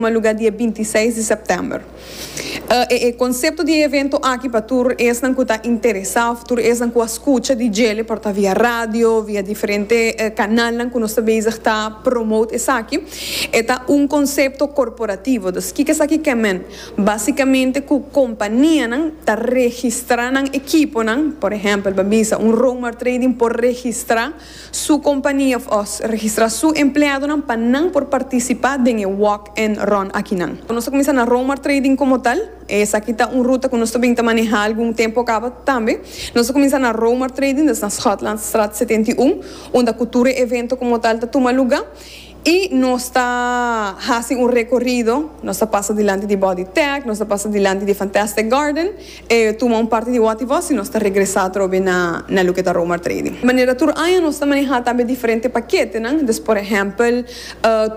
Misma lugar dia binti seis di sèptèmber. E e konsepto di e evento aki pa tur esnan ku ta interesá òf tur esnan ku a skucha di djele por ta via radio, via diferente kanalnan ku nos ta bezig ta promote esaki, e ta un konsepto korporativo. Dus kiko esaki ke men? Básikamente ku kompanianan ta registrá nan ekiponan, por ehèmpel, bo a bisa un Roma Trading por registrá. su kompania of os registra su empleadonan pa nan por partisipá den e walk and run akinan. Nos ta kuminsá na Roma Trading komo tal, esaki ta un ruta ku nos ta bin ta manehá algun tempu kaba. Tambe nos ta kuminsá na Roma Trading, ta na Schotlandstraat setenta i un, unda ku tur e evento komo tal ta tuma lugá. I nos ta hasi un rekorido, nos ta pasa dilanti di Body Tech, nos ta pasa dilanti di Fantastic Garden, e tuma un parti di Watiwasi i nos ta regresa atrobe na loke ta Romar Trading. Manera tur aña nos ta maneha tambe diferente paketenan, dus por ehèmpel,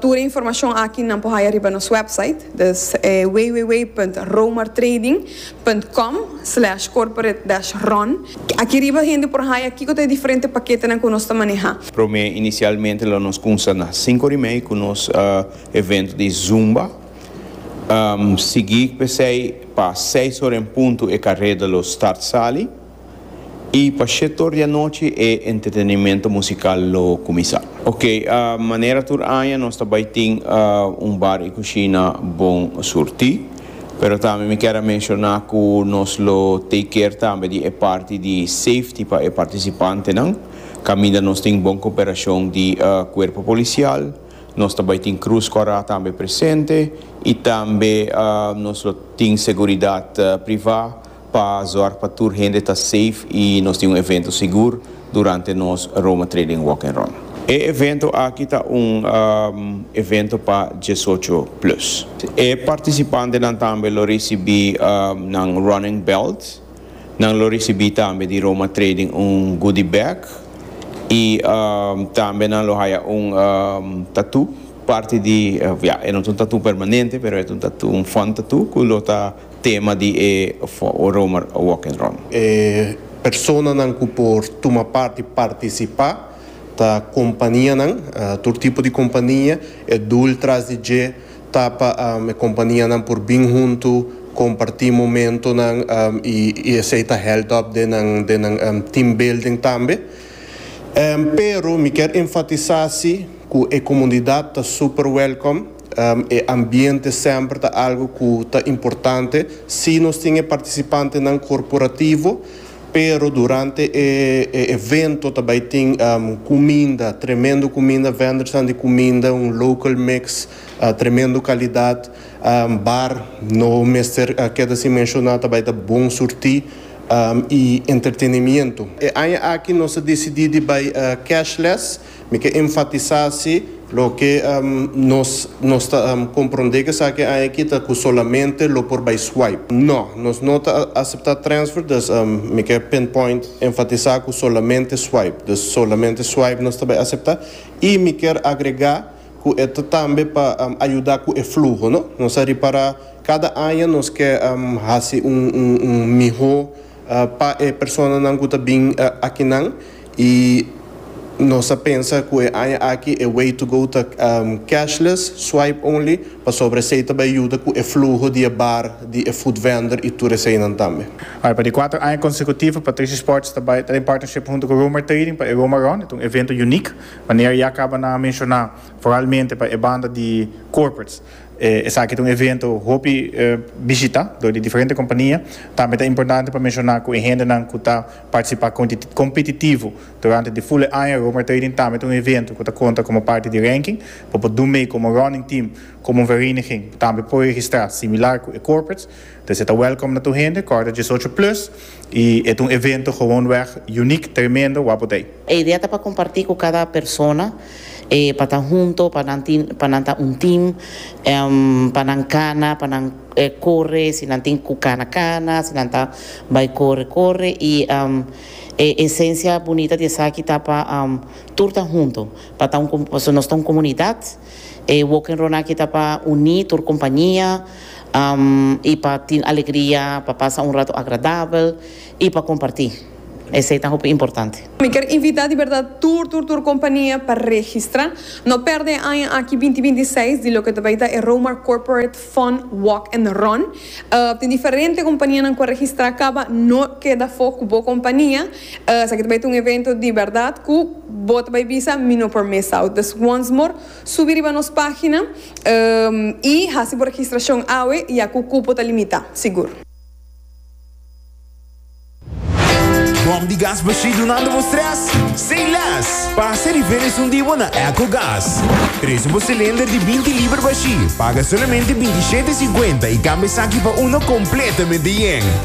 tur e informashon aki nan por haya riba nos wèpsait, dus www punt romartrading. punt com slash corporate dash run. Aki riba hende por haya kiko ta e diferente paketenan ku nos ta maneha. Promé inisialmente lo nos kumsa na sinku di mei ku nos evento di zumba. Sigi p'esei pa seis ora en puntu e kareda lo start sali. y pa shetor di anochi e entretenimiento musical lo cuminsa. Ok, manera tur aña nos ta bay tin un bar y cushina bon surti. Pero tambe mi kier a menciona cu nos lo take care tambe di e parti di safety pa e participantenan. Caminda nos tin bon cooperacion di cuerpo policial, nos ta bay tin cruz cora tambe presente y tambe nos lo tin seguridad priva Pa zorg pa tur hende ta safe y nos tin un evento sigur durante nos Roma Trading Walk and Run. E evento aki ta un evento pa diesocho plus. E participantenan tambe lo ricibi nan running belt, nan lo ricibi tambe di Roma Trading un goodie bag y tambe nan lo haya un tattoo parti di, ya e no ta un tattoo permanente pero e ta un fun tattoo cu lo ta. Tema di e Romer Walk and Run. E personanan ku por tuma parti partisipá ta kompanianan, tur tipo di kompania. E dul tras di dje ta pa e kompanianan por bin huntu, kompartí momentonan i esei ta hèlt òp den nan team building tambe. Pero mi kier enfatisá si ku e komunidat ta super wèlkòm. E ambiente semper ta algo cu ta importante. Si nos tin e participantenan corporativo, pero durante e evento ta bay tin cuminda, tremendo cuminda, vendors di cuminda, un local mix, tremendo calidad. Bar no mester keda sin menciona, ta bay ta bon surti y entretenimiento. E aña aki nos a decidi di bay cashless. Mi ke enfatisá si loke nos nos ta komprondé ku esaki aña aki ta ku solamente lo por bai swipe. No, nos no ta aseptá transfer, dus mi ke pinpoint enfatisá ku solamente swipe. Dus solamente swipe nos ta bai aseptá i mi ker agregá ku e ta tambe pa ayudá ku e fluho, no. Nos a ripará kada aña nos ke hasi un un un mihó. Pa e personanan ku ta bin akinan i nos a pensa ku e aña aki e way to go ta cashless, swipe only, pasobra esei ta bai yuda ku e fluho di e bar, di e food vendor i tur eseinan tambe. Bai, pa di kuater aña konsekutif Patricia Sports ta bai ta den partnership huntu ku Roamer Trading pa e Roma Run. E ta un evento uniek, manera ya kaba nan a menshoná, foralmente pa e banda di corporates. Esaki ta un evento hopi bishita dor di diferente kompania. Tambe ta importante pa menshoná ku e hendenan ku ta partisipá kompetitivo durante di fule aña, Roamer Trading tambe ta un evento ku ta konta komo parti di ranking pa por dun mei komo running team, komo un vereniging, tambe por registrá similar ku e corporates. P'esei ta welkom na tur hende, kòrda diesocho plus, i e ta un evento gewoonweg uniek, tremendo, wapo t'ei. E idea ta pa kompartí ku kada persona, e pa ta hunto, pa nan tin, pa nan ta un tim, èm, pa nan kana, pa nan korre, si nan tin ku kana kana, si nan ta bai korre korre, i, èm, e esensia bunita di esaki ta pa, èm, tur ta hunto, pa ta un, pasobra nos ta un komunidat. E Walk and Run aki ta pa uní tur kumpañia i pa tin alegria, pa pasa un ratu agradabel i pa kompartí. Esei ta hopi importante. Mi kier invitá di bèrdat tur tur tur kumpañia pa registrá. No pèrdè e aña aki binti binti i seis di loke ta bai ta e Romar Corporate Fun Walk and Run. Tin diferente kumpañianan ku a registrá kaba. No keda afó ku bo kumpañia. Esaki ta bai ta un evento di berdad cu bo ta bai bisa mi no por mesa out. Dus once more subi riba nos pagina y haci bo registracion awe ya cu cupo ta limita, sigur. Bom di gas bashí dunando bo stress? Say less! Pasa e riveles un di bo na Echo Gas. Trece bo cilinder di binti liber bashí, paga solamente binti shete cincuenta y cambia esaki pa uno completamente yen.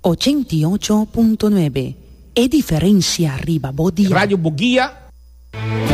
Ochenta i ocho punto nuebe, e diferencia riba bo dial. Radio Bugia.